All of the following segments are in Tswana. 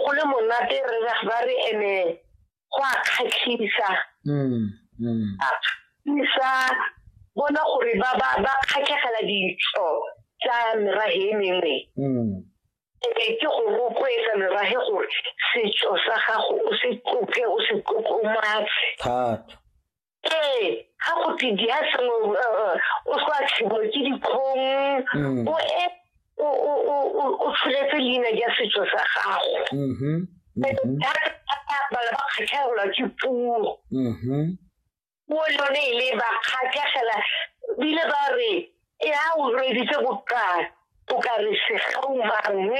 go le monate re ba re ene go a kgatlhisa mm, mm. kgatlhisa bona gore ba ba ba kgatlhegela ditso tsa merage e mengwe mm. ebe ke go rotloetsa merage gore setso sa gago o se tlophe o se tlotlomatse thata ee ga go tse di a sengwe uh, uh, o sa tlhibo ke dikgong mm. o e o tsholetse leina ja setso sa gago mm-hmm. Mm-hmm. thata bala ba kgatlhegelwa ke puo puo mm-hmm. lone e le ba kgatlhegela bile ba re e a o reditse bokana o ka re segaumang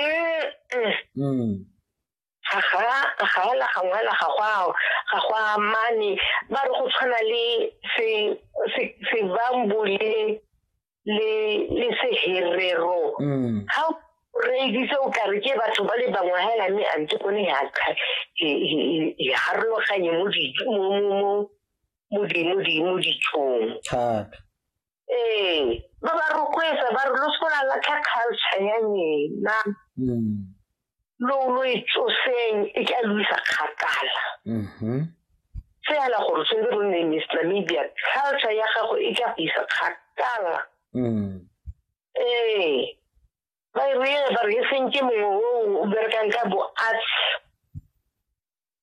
mm. ga ga la ga ngwa la ga gwa ga gwa mane ba re go tshwana le se se se bambu le le le se herero mm. ha re ditse o ka re ke batho ba le bangwe ha la me ante ko ne ya ka e harologanye mo di mo mo mo mo di mo di mo di tshong thata ee ba ba rotloetsa ba re lo se la latlha culture ya lena mm. lo lo e tsoseng e ka lo isa kgakala mm-hmm. fela gore tshwanetse go nne mr media culture ya gago e ka go isa kgakala mm. ee ba e re ba re seng ke mongwe o berekang ka bo arts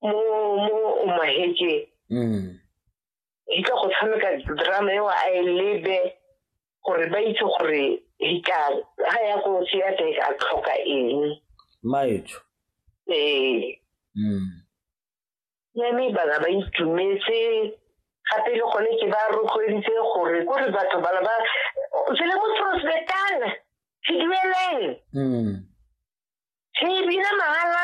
mo mo o mahekeng mm. di tla go tshameka drama eo a e lebe gore ba itse gore di ka ga ya ko tseya teng ka tlhoka eng maetho ee mm. ya mme bana ba itumetse gape le gone ke ba rotloeditse gore ko re batho bana ba se le mo prospectana se dueleng mm. re e bina mahala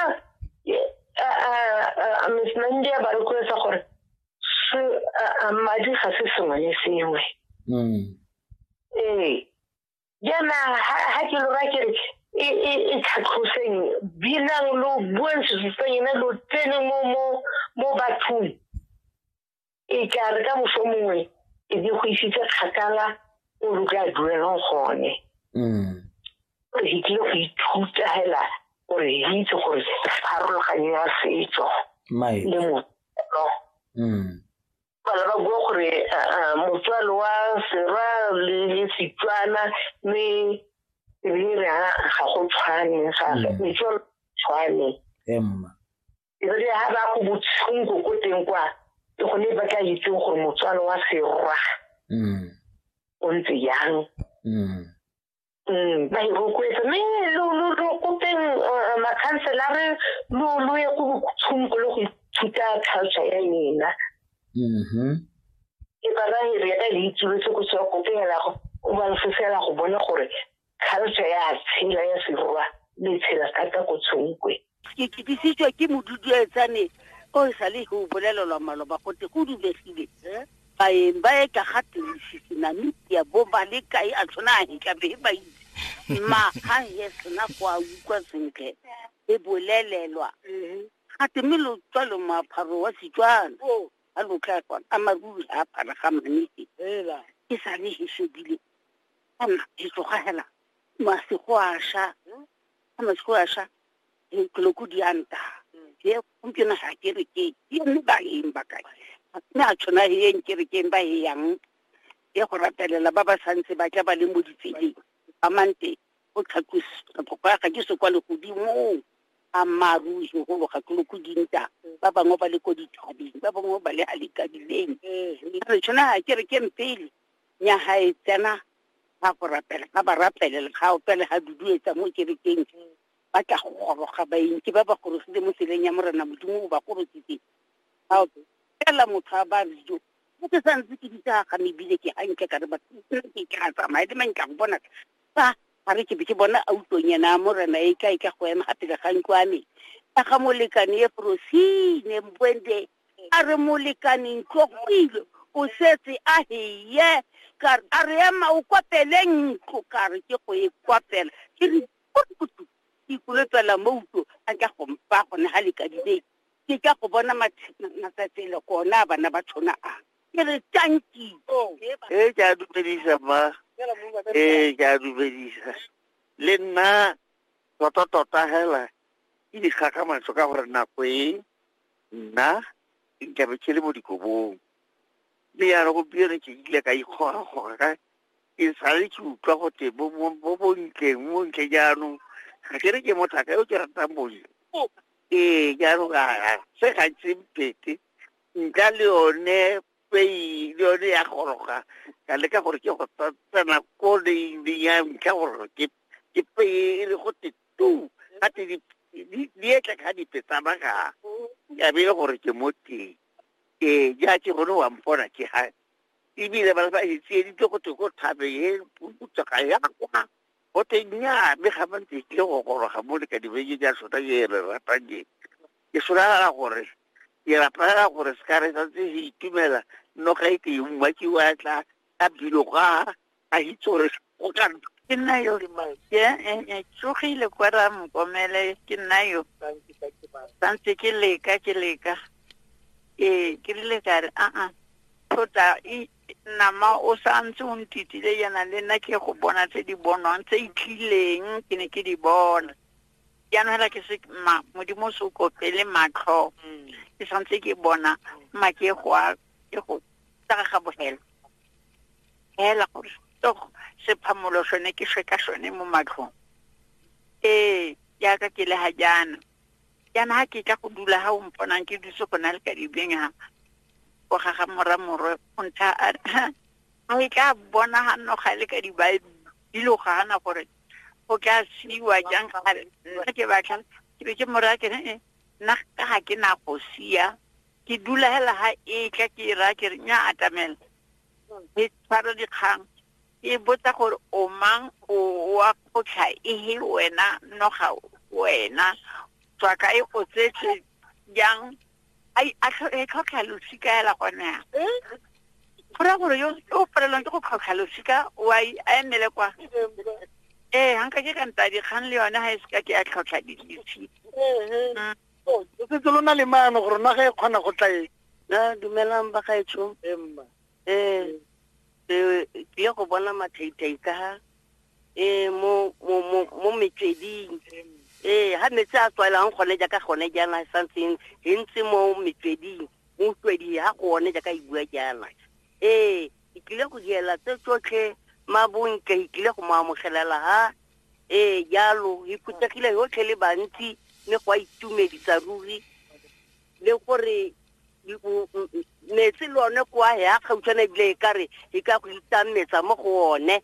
miss nandi a ba rotloetsa gore madi ga se sengwe le sengwe mm. ee jaana ga ke lora ke re e, e, e tlhatlhoseng binang lo buang sesusa ena lo tsene mo bathong e ka re ka moso mongwe e di go isitse kgakala o re ka duelang gone mm. gore ke tlile go ithuta hela gore ke itse gore pharologanyo ya setso le motswalo mm. bana ba bua gore motswalo wa serwa le setswana mme ebile re ga go tshwane ga mm. metswalo tshwane emma ebile ha ba go botshunko ko teng kwa ke gone ba tla itseng gore motswalo wa serwa mm. o ntse yang mm. mm, ba e rotloetsa mme lo kopeng uh, makhanselare lo lo ye go botshunko le go ithuta culture ya ena mm-hmm. ke ba ba e re ya ka le itsuletse go tswa kopeng ya lago o ba lefofela go bona gore kgaloso ya tshela ya serwa le tshela ka ka go tshonkwe ke kitisitswe ke moduduetsane o e sale go bolelelwa maloba gote go dubegile baeng ba e ka ga tirisitse namibia bo ba le kae a tshwana a hetla be ba itse mma ga he sena go a utlwa sentle e bolelelwa gate mme lo tswa lo moapharo wa setswana a lo tla kwana a maruri a apara ga manese e sale he shebile ana ditsoga hela masigo a sha a masigo a sha ditloko di a nta ye gompieno ga ke re ke ye mme ba yeng ba kae mme a tshwana he yeng ke re ke ba he yang ye go ratelela ba ba santse ba tla ba le mo ditseleng ba mante o tlhatlosiphokoya ga ke se kwa legodimong a maru segolo ga ke loko dinta ba bangwe ba le ko dithabeng ba bangwe ba le ga lekadileng re tshwana ga ke re ke mpele nya ga e tsena ga go rapela ga ba rapelela ga opele ga duduetsa mo kerekeng ba tla go goroga baentsi ba ba gorogile mo tseleng ya morena modimo o ba gorositse ga fela motho a ba dijo mo ke sa ntse ke ditsa ga mebile ke gantle ka re ba ke ka tsamaya le mang ka go bona fa ga re ke be ke bona autlonyana morena e tla e tla go ema ga pele ga ntlo a me ka ga molekane e frosine mbwende A re, Molekane, ntlo go ile, o setse a heye. Ka re, A re ema o kwapele ntlo. Ka re, Ke go e kwapela. Ke re, Purukutu! Ke ikolopela mo uto, a tla go mpa gone ga lekadibeng. Ke tla go bona matsatsele gona a bana ba tshona a. Ke re, Tanki! Ee, ke a dumedisa, mma. Ee, ke a dumedisa. Le nna, tota-tota hela, ke di gakgamatso ka gore nako e. nna ke nkabe ke le mo dikobong mme ya re gompieno ke ile ka ikgogagoga ka ke sale ke utlwa gote mo bontleng mo ntle jaanong ga ke re ke motlaka yo ke ratang bontle ee jaanong se gantsi mpete nka le yone pei le yone ya goroga ka leka gore ke go tsena ko leineng ya ntlha gore ke pei e le go tete tu ga te di etla ka dipe tsa baga ya be e le gore ke mo teng ee ja ke gone wa mpona ke ga ebile ba ba etsieditse go te go thabe e putsaga ya kwa go te nya mme ga ba ntse tlile go goroga mo le ka dibeke ja sota e re ratang ke ke solara gore ke rapela gore se ka re santse se itumela noga e ke e mmakiwa tla ka bilo ga a itse gore go ka ke nna yo ke tsogile kwa ra mokomele ke nna yo santse ke leka ke leka ee ke rile ka re aa thota nama o santse o ntitile yana le nna ke go bona tse di bonwang tse itlileng ke ne ke di bona jaanong fela ke se modimo o se o kopele matlho mm. ke santse ke bona make go a ke go tsaga ga bogelo fela gore togo sephamolo sone ke shwe ka sone mo matlhong ee jaaka ke le ga jaana jaana ga ke tla go dula ga o mponang ke dutse go na le ka dibeng ga go gaga mora morwe o ntsha a no e tla bona ga nno ga le ka dilo gana gore go tla siwa jang gale nna ke batla ke be ke mora ke nna ga ke na go sia ke dula hela ha e tla ke e raya ke re nya atamela ke tshwara dikgang ke e botsa gore o mang o wa kgotlha ehe wena noga wena tswa kae o tsetse jang ai a tlho- e tlhotlha losika hela gone ya go raya gore yo o palelwang ke go tlhotlha losika wa i- a emele kwa ee ganka ke ka nta dikgang le yone ga e seka ke ya tlhotlha di- losika o setse lo na le maano gore naga e kgona go tlae na dumelang ba gaetsho emma um tlile go bona mathaitai ka ha um mo metsweding ee ga metsi a tswaelang gone jaaka gone jaana e santseng e ntse mo metsweding mo utlweding ga gone jaaka e bua jaana ee ke tlile go diela tse tsotlhe mabontle ke tlile go mo amogelela ha ee jalo e phuthegile yotlhe le bantsi mme go a itumedisa ruri le gore metsi le one kwa ya gautshwana ebile e kare e ka go itametsa mo go one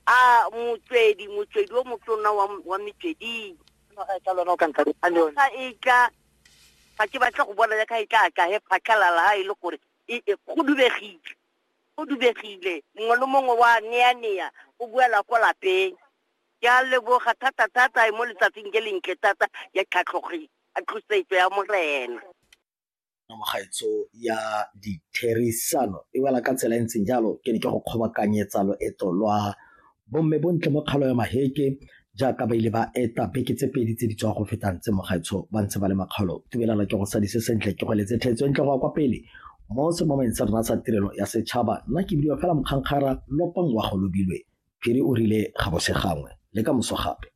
a motswedi motswedi o motona wa metsweding ga e tla ga ke batla go bona ya ka e tla ka he phatlhalala ha e le gore e, e kgudubegile Go dubegile, mongwe le mongwe wa neanea go boela kwa lapeng. Ke a leboga thatathata mo letsatsing je lentle thata ja tlhatlhosetso ya Morena. Tsamagaetso ya ditherisano e wela ka tsela e ntseng jalo, ke ne ke go kgobakanyetsa loeto lwa Bomme bontle mo kgalo ya maheke jaaka ba ile ba eta beke tse pedi tse di tswa go fetang tse mogaetsho ba ntse ba le makgalo tubelana ke go sadise sentle ke go letse tlhetso entle go ya kwa pele mo semomeng sa rona sa tirelo ya setšhaba nna ke bidiwa fela mokgankgara lopang wa go lobilwe phiri o rile ga bose gangwe le ka moso gape